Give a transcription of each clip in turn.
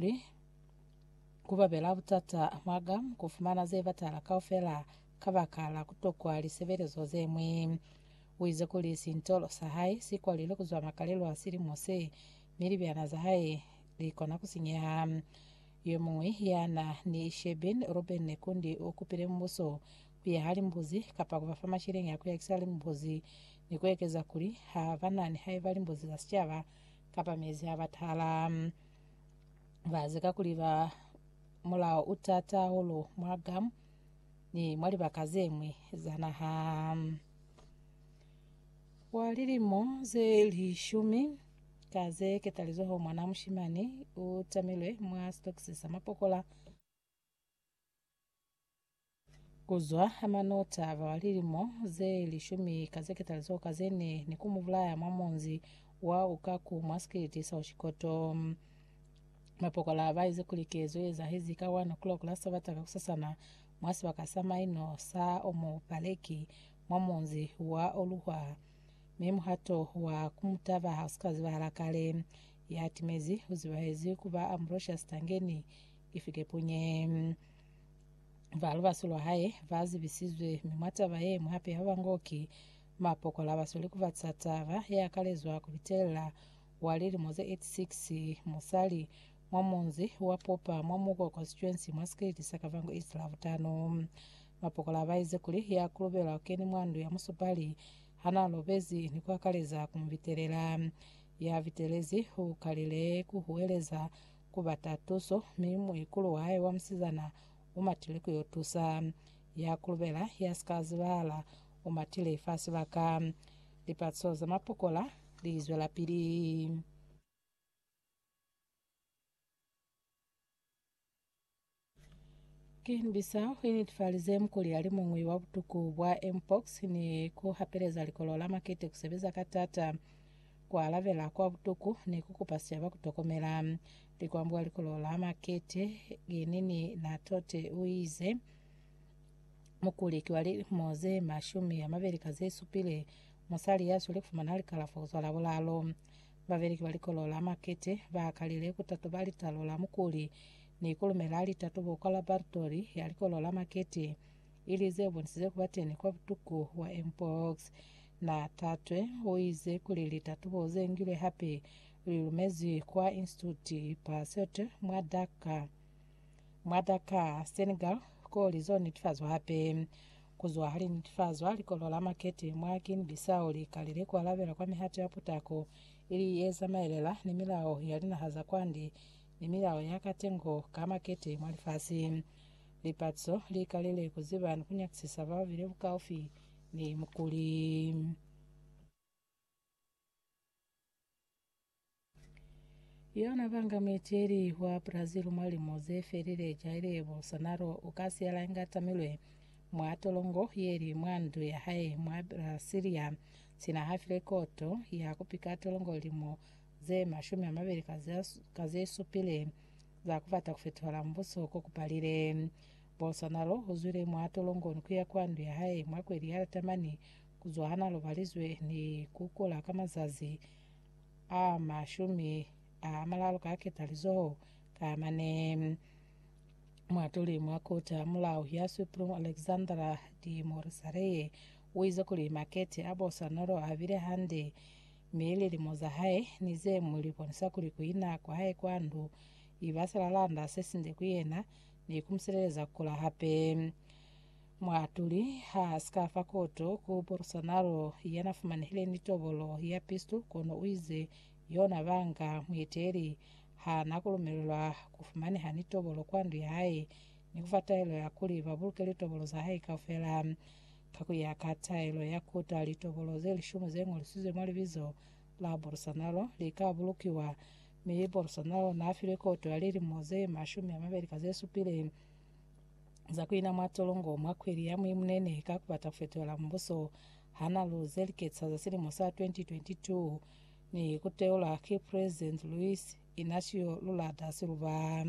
kuli, Ku babela butata mwaka ku fumana ze batala kaufela kabaka la ku tokwa lisebelezo ze ñwi. U ize kuli sintolo sa hae si kwalilwe ku zwa makalelo a silimo se, mi libyana za hae li kona ku sinyeha. Yo muñwi ya na ni Shebeen Ruben Nekundi u kupile mubuso ku yaha limbuzi kapa ku ba fa masheleñi a ku yakisa limbuzi, ni ku ekeza kuli ha ba na ni haiba limbuzi za sicaba kapa mezi a batala. Ba zika kuli ba mulao u tata hahulu mwa Guam ni mwa libaka ze ñwi za naha. Kwa lilimo ze lishumi ka ze ketalizoho mwana mushimani u tamilwe mwa sitokisi sa mapokola. Kuzwa ha manota a ba lilimo ze lishumi ka ze ketali zeo ka ze ne ni ku mu bulaya mwa munzi wa Ukaku mwa sikiliti sa Oshikoto. Mapokola ba ize kuli kezo ye ezahezi ka 1 o'clock la Sabata kakusasana mwa sibaka sa maino sa Omo Paleki mwa munzi wa Oluhwa, mi muhato wa ku mu taba ha u si ka zibahala kale. Ya timezi u zibahezi ku ba Ambrosius Tangeni Ifikepunye. Ba lubaso lwa hae ba zibisizwe, mi mwa taba ye ñwi hape ba bango ki mapokola ba sweli ku ba ca taba ye akalezwa ku bitelela wa lilimo ze 86 musali mwa munzi wa Popa mwa Muko Constituency mwa sikiliti sa Kavango East Lavutano. Mapokola ba ize kuli ya kulubelwa u keni mwa ndu ya musupali ha na lobezi ni ku akaleza ku mu bitelela. Ya bitelezi u kalile ku huweleza ku bata tuso, mi muikulu wahae wa musizana u matile ku yo tusa. Ya kulubela, ya si ka zibahala, u matile fa sibaka. Lipatiso za mapokola li zwelapili. Ki niti sa ku initfalize mukuli ya li muñwi wa butuku bwa mpox ni ku hapeleza likolo la makete ku sebeza ka taata, ku alabela kwa butuku, ni ku kupa sicaba ku tokomela. Likwambo kwa likolo la makete ki Nini Na Tote u ize, Mukuli ki wa lilimo ze mashumi a mabeli ka ze supile, musali ya sweli ku fumana likalafo ku zwa Labulalo. Babeleki ba Likolo la Makete ba kalile ku tatuba litalo la mukuli ni ku lumela litatubo kwa laboratori ya Likolo la Makete, ili ze bonisize ku ba teni kwa butuku bwa mpox. Na Thatwe u ize kuli litatubo ze ngilwe hape li lumezwi kwa Institute Pasteur mwa Dhaka. Mwa Dakar, Senegal, koo lizo netifazwa hape. Kuzwa hali netifazwa, likolo la makete mwa Guinea Bissau li kalile ku alabela kwa mihato ya putako ili ye zamaelela ni milao ya linaha za kwande ni milao ya katengo ka makete mwa lifasi. Lipatiso li kalile ku ziba ni ku nyakisisa bao bili bukaufi ni mukuli. Yona banga mueteli wa Brazil mwa limo ze felile Jair Bolsonaro u ka siyala inga tamilwe mwa tolongo ye li mwa ndu ya hae mwa Brasilia sina ha file koto ya ku pika tolongo limo ze mashumi a mabeli ka ze supile za ku bata ku fetola mbuso ko ku palile. Bolsonaro u zwile mwa tolongo ni ku ya kwa ndu ya hae mwa kweli ya Latamani Kuzwa ha na lobalizwe ni ku kula ka mazazi a mashumi a malalu ka ketalizoho ka mane, muatuli mwa Koti ya Mulao ya Supreme Alexandra de Morassareye u ize kuli makete a bo Sanolo a bile hande, mi lilimo za hae ni ze ñwi li bonisa kuli ku ina kwa hae kwa ndu i ba silalanda se sinde ku yena ni ku mu sileleza ku kula hape. Muatuli haasika fa koto ku Bolsonaro yana fumanehile ni tobolo ya pistu kono uize yona banga mueteli haana kulumelelwa kufumaneha ni tobolo kwa ndu yahae ni kufa taelo ya kuli babuluke litobolo zahae kaufela. Ka kuya ka taelo ya kota, litobolo ze lishumi zengolisizwe mwa libizo la Bolsonaro lika bulukiwa, mi Bolsonaro naafilwe koto ya lilimo ze mashumi amabeli ka zesupile. za kuina mwa tolongo mwa khweli ya Mwemunene ka kubata kufetohela mbuso hana lu ze liketsa za silimo sa 2022 ni kuteula ki President Luiz Inacio Lula da Silva.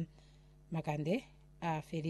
Makande a felile.